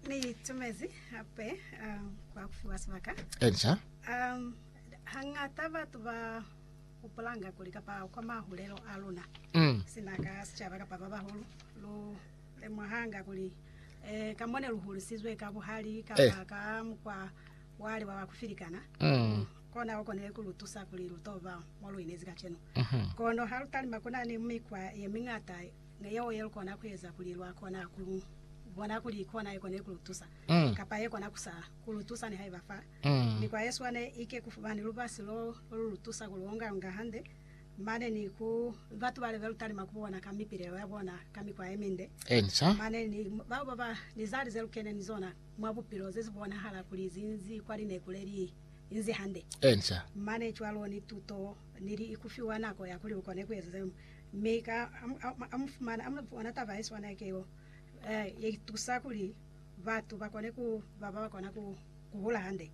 Ni itumezi hape um, kwa kufiwa sibaka. Elisha. Um, hangata batu ba hupulanga kuli kapa kwa mahulelo a luna mm. sina ka sicaba kapa ba bahulu lu lemuhanga kuli eh, ka mone lu hulisizwe ka buhali kapa eh. ka mukwa wale wa bakufilikana mm. kona o konile ku lu tusa kuli lu toba mo lu inezi kacenu mm -hmm. kono ha lu talima kuna ni mikwa ye mingata Ni yeo ye lu kona ku eza kuli lwa kona ku lu bona kuli ki ona ye konile ku lu tusa, kapa ye kona ku sa ku lu tusa nihaiba fa mikwa ye swane ike ku fumani lubasi lo lu lu tusa ku lu onga-onga hande mane ni ku batu bale be lu talima ku bona ka mipilelo ya bona ka mikwa ye minde, mane ni bao ba ba ni zali ze lu kene ni zona mwa bupilo ze zi bonahala kuli zi nzi kwa lineku le li nzi hande, mane cwalo ni tuto ni li ku fiwa nako ya kuli lu kone ku eza zeo. Mi ka a mu fumana, a mu bona taba ye swana keo, ye tusa kuli batu ba kone ku ba ba kona ku hula hande,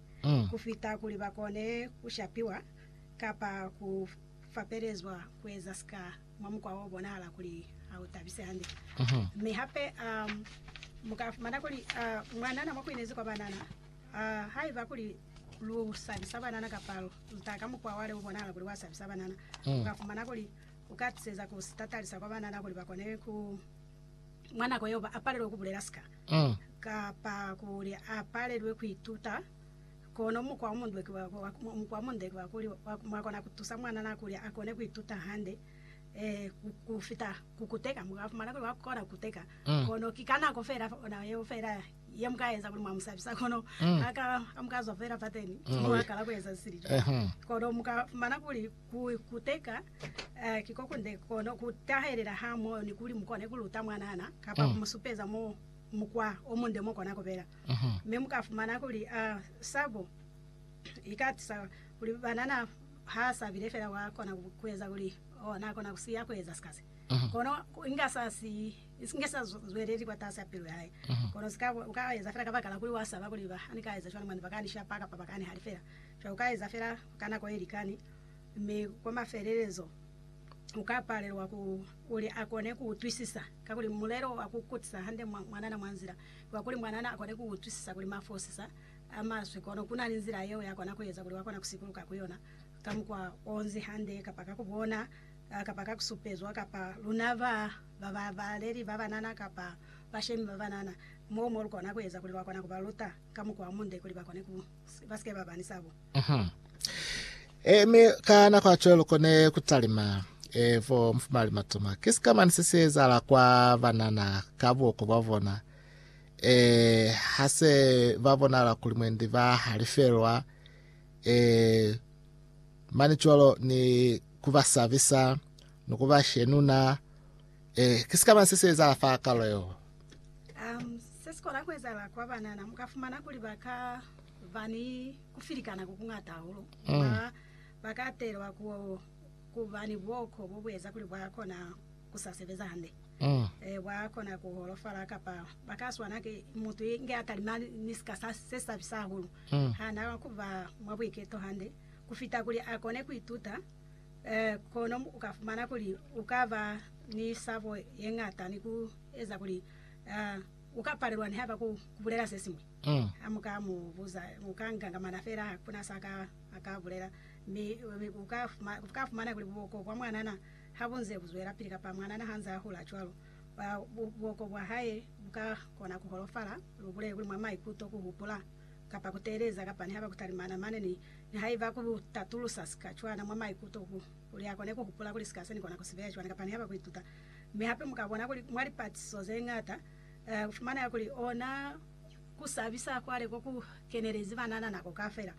ku fita kuli ba kone ku shapiwa kapa ku fapelezwa ku eza sika mwa mukwa o bonahala kuli ha u tabise hande. Mi hape mu ka fumana kuli mwanana mwa ku inezi kwa banana, haiba kuli lu sabisa banana kapa lu ta ka mukwa wa le u bonahala kuli wa sabisa banana, u ka fumana kuli u ka tiseza ku si tatalisa kwa banana kuli ba kone ku mwa nako yeo ba apalelwe ku bulela sika kapa kuli a palelwe ku ituta. Kono mukwa o munde ki wa kuli, mwa kona ku tusa mwanana kuli a kone ku ituta hande ku fita ku kuteka. Mu ka fumana kuli wa kona ku kuteka, kono ki ka nako fela ona yeo fela ye mu ka eza kuli mwa mu sabisa. Kono ha mu ka zwa fela fateni, mwa kala ku eza sili jwalo, kono mu ka fumana kuli, Ku ikuteka ki ko kunde kono ku tahelela ha moyo ni kuli mu kone ku luta mwanana kapa ku mu supeza mwa mukwa o munde mo kona ku bela. Mi mu ka fumana kuli sabo i ka tisa kuli banana ha a sabile fela wa kona ku eza kuli na kona ku siya ku eza sika se, kono inga sa siyi, inge sa zweleli kwatasi a pilu ya hae. Kono sika u ka eza fela kabakala kuli wa saba kuli ba ni ka eza cwani mane ba ka ni shapa kapa ba ka ni halifela. Cwale u ka eza fela. ka nako ye likani, mi kwa mafelelezo u ka palelwa ku, kuli a kone ku utwisisa, kakuli mulelo wa ku kutisa hande mwanana mwa nzila wa kuli mwanana a kone ku utwisisa kuli mafosisa a maswe, kono ku na ni nzila yeo ya kona ku eza kuli wa kona ku sikuluka ku yona ka mukwa o nzi hande, kapa ka ku bona, kapa ka ku supezwa, kapa luna ba ba babaleli ba banana kapa bashemi ba banana, moo mo lu kona ku eza kuli lwa kona ku ba luta ka mukwa o munde kuli ba kone ku. E, mi ka nako ya cwalo kone kutalima e, vo mufumali matoma. Ki sikamani se si ezahala kwa banana ka buoko bwa bona e, ha se ba bonala kuli mwendi ba halifelwa e, mani cwalo ni kubasabisa ni kubashenuna Ee, ki sikaba se si ezahala fa kalo yeo. Um, se si kona ku ezahala kwa banana, mu ka fumana kuli ba ka ba ni ku filikana ku kuñata hahulu. Mm. Ba, ba ka atelwa ku, ku ba ni buoko bo bu eza kuli bwa kona ku sa sebeza hande. Mm. Eh, bwa kona ku holofala, kapa ba ka swana ki mutu inge a talima ni sika sa, se si sabisa hahulu. Mm. Ha na ku ba mwa buiketo hande ku fita kuli a kone ku ituta Kono u ka fumana kuli u ka ba ni sabo ye ñata ni ku eza kuli u ka palelwa nihaiba ku bulela se siñwi. Ha mu ka mu buza, u ka ngangamana fela, ha ku na sa a ka bulela. Mi u ka fumana kuli buoko bwa mwanana ha bu nze bu zwelapili, kapa mwanana ha nze a hula cwalo, buoko bwa hae bu ka kona ku holofala. Lu bulele kuli mwa maikuto, ku hupula kapa ku teeleza kapa niha ba ku talimana mane ni nihaiba ku tatulusa sika cwana mwa maikuto ku kuli ha kone ku hupula kuli sika se ni kona ku si beya cwana kapa niha ba ku ituta. Mi hape mu ka bona kuli mwa lipatisiso ze ñata, ku fumanela kuli ona ku sabisa kwale ko ku kenelezi banana nako kafela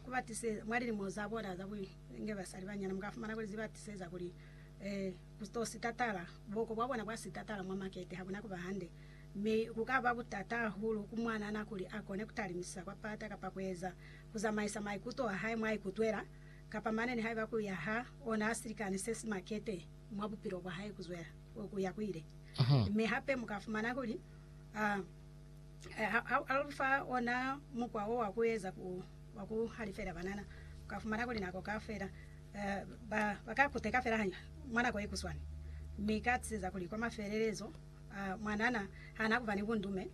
ku ba tiseza mwa lilimo za bona za ku nge basali banyana, mu ka fumana kuli zi ba tiseza kuli ku to sitatala, buoko bwa bona bwa sitatala mwa makete ha bu na ku ba hande. mi ku ka ba butata hahulu ku mwanana kuli a kone ku talimisa kwa pata kapa ku eza, ku zamaisa maikuto a hae mwa ikutwela, kapa mane nihaiba ku ya ha ona silikani se si makete mwa bupilo bwa hae ku zwela ku ya ku ile. Mi hape mu ka fumana kuli a ha lu fa ona mukwa wo wa ku eza wa ku halifela banana, u ka fumana kuli nako ka fela Ba ba ka kuteka fela hañwi mwa nako ye kuswani, mi ka tiseza kuli kwa mafelelezo, mwanana ha na kuba ni bundume,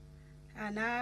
ha na